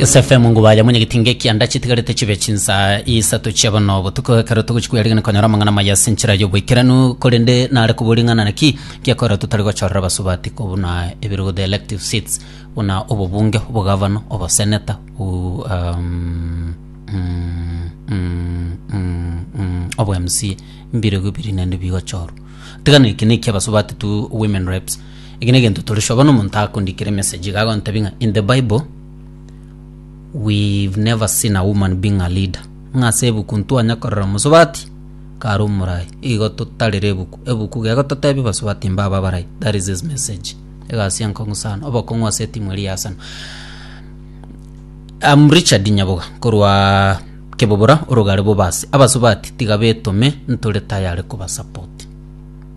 SFM ngubaya mwenye gitinga ekia ndachi tigarete chibe chinsa isato chia bono botuko ekero togochi kwerigana konyora amang'ana maya ase enchera y'oboikeranu korende nare kobori ng'ana naki giakorera totari gochorera abasubati kobuna ebirugo the elective seats buna obobunge obogavana oboseneta u- um, mm, mm, mm, mm, obo mca mbirugo biri naende bigochorwa tigana eki nekia abasubati tu women reps Eki negento tore sure bono omonto akondikera emessage iga agontebia ng'a in the bible we've never seen a woman being a leader. Ng'a ase ebuku ntwanya korora omosubati kare omorayi. Igo totarire ebuku. Ebuku iga egototebia basubati mbabe abarai. That is his message. Egasi enkong'u sana. Obokong'u ase etimu eria ya Arsenal. I'm Richard Nyaboga korwa Kebobora orogare Bobasi. Abasubati tiga betome ntore tayare koba support.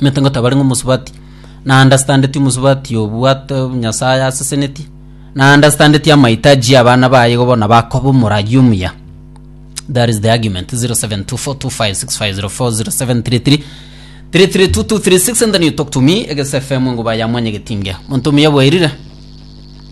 Omanyete ngotabare ng'a omosubati na understandeti omosubati obwate Nyasaye aseseneti na understandeti amahitaji y'abana baye igo bono bakoba omoragi omuya. That is the argument 0724256504 0733332236 and then you talk to me egese FM nguba ya mwenye getinge. Monto omuya bwairire.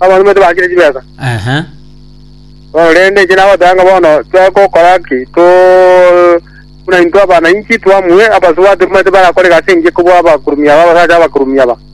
Abana baito bakire chibesa. Ehe. Bono rende inche nagoteba ng'a bono twegokora ki to buna intwe abananchi twamue abasubati mbaito barakore egasi engiya kobua abakurumi aba abasacha abakurumi aba